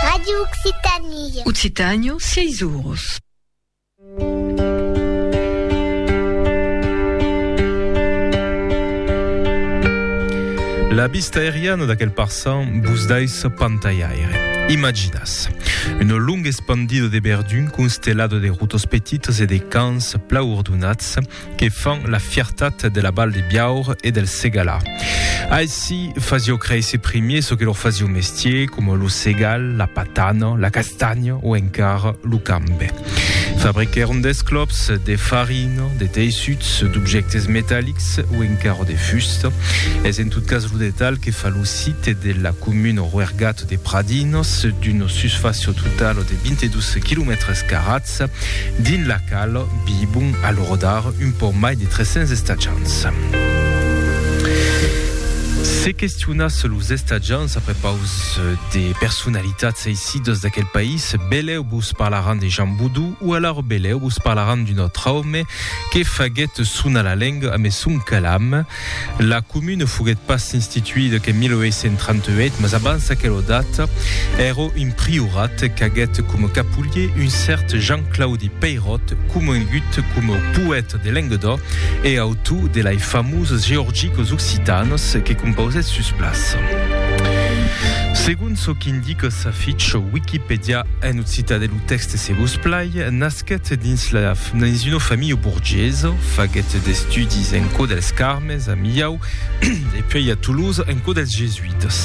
Radio Occitanie. Occitània, sièis oros. La vista aeriana d'aquel parçan vos dais pantalhaire. Imaginàs una longa espandida de verdun constellada de rotas petitas e de camps plau ordonats, que fan la fiertat de la Val de Biaur e del Segalà. Aici fasio créisser primier ce que lor fasio mestier, com lo segal, la patana, la castanya o encara lo cambe. Fabriquèron d'esclops, de farina, de teissuts, d'objectes metallics o encara de fusta. Es en tot cas lo detalh que fa lo site de la comuna Roergat de Pradinos, d'una susfàcia totala de 22 km carats, Estacians, dins la qual vivon a lo rodar un pauc mai de 300 estacians. Se questionatz los estacians a prepaus de personalitats eissidas d'aquel país, belèu vos parlaràn de Jean Boudou o alara belèu vos parlaràn d'un autre òme que faguèt sonar la lenga amé son calam, La comune foguèt pas instituida qu'en 1838, mas abans aquela data, èra un priorat qu'aguèt coma capolier un cèrt Jean-Claudi Peyrot, comongut coma poèta de Lenguedoc e autor de lai famoses Georgiques occitanes que compausèt sus plaça. Segon çò qu'indica sa ficha Wikipèdia en occitan e lo tèxte se vos plai, Nasquèt dins la dins una familha borgesa, faguèt d'estudis en cò dels Carmes, a Millau, e puèi a Toulouse en cò dels Jesuitas.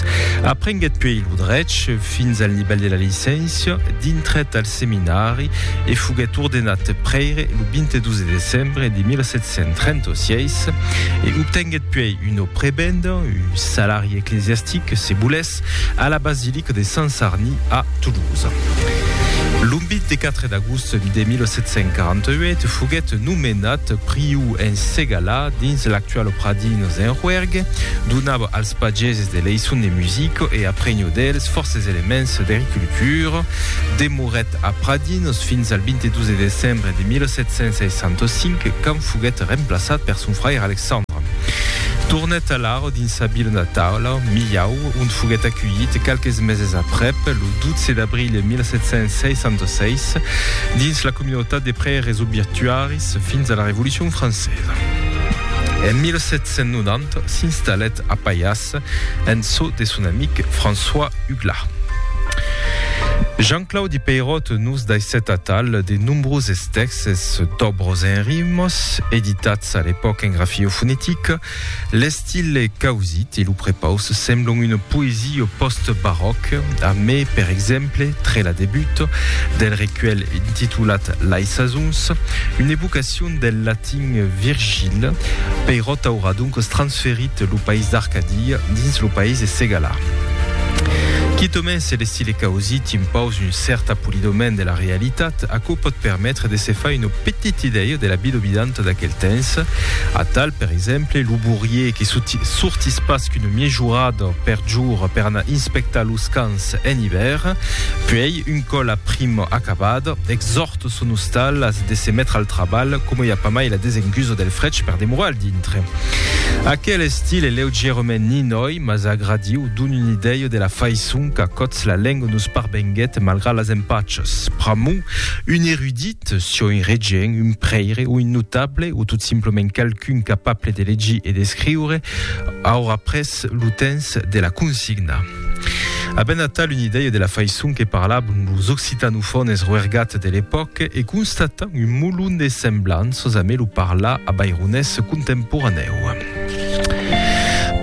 Aprenguèt puèi lo drech fins al nivèl de la licéncia, dintrèt al seminari e foguèt ordenat prèire lo 22 de decembre de 1736 e obtenguèt puèi una prebenda, un salari eclesiastic, se volètz, A la basilica de Sant Sarni a Toulouse. Lo 24 d'agost de 1748 foguèt nomenat priu en Segalà, dins l'actual Pradines en Roergue, donava als pageses de leiçons de musica e aprenhó dels fòrces elements d'ericultura. Demorèt a Pradines fins al 22 de decembre de 1765 quand foguèt remplaçat per son fraire Alexandre. Tornèt a Larn. dins sa vila natala, Millau, ont foguèt aculhit qualques meses aprèp, lo 12 d'abril 1766, dins la comunautat de prèires obituaris fins a la Revolucion francesa. En 1790 s'installèt a Paias en çò de son amic François Huglar. Jean-Claudi Peyrot nos daissèt atal de nombroses tèxtes, d'òbros en rimos, editats a l'epòca en grafio fonetica, L'estil es causit e lo prepaus semblon una poesia post-baròc, a mé per exemple tre la debut del recuèlh intitulat Lai Sasons, una evocacion del latin Virgil, Peirot aurà doncas transferit lo país d'Arcadia dins lo país de Segalà. Quitament se l'estil es causit impaus un cèrt apolidament de la realitat, aquò pòt permetre de se far una petit idèu de la bilobidanta d'aquel temps, atal, per exemple, lo bourier que sortís pas qu'una miejorada per jorn per anar inspectar los camps en ivèrn, puèi, un còp la prima acabada, exòrta son ostal a de se metre al trabalh coma i a pas mai la desengusa del frech per demorar al dintre. Aquel estil es leugièrament ninòi, mas agradiu, dona una idèu de la faiçon qu'a còts la lenga nos parvenguèt malgrat las empachas. Pr'amor, un erudit, Eth soi regent, un prèire o un notable, o tot simplament qualqu'un capable de legir e d'escriure, aurà pres lo temps de la consignar. Avent atal una idèia de la faiçon que parlavan los occitanofònes roergats de l'epòca e constatant un molon de semblanças amé lo parlar avaironés contemporanèu,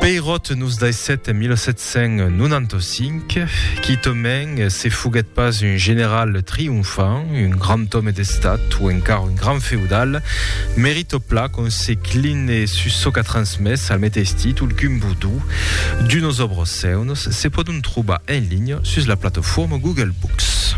Peirot nos daissèt en 1700 1795, quitament se foguèt pas un general triomfant, un grand òme d'estat o encara un grand feudal, merito pla qu'on se cline sus çò qu'a transmés al meteis títol qu'un vodú. D'unos òbros seuns se pòdon trobar en linha sus la plataforma Google Books.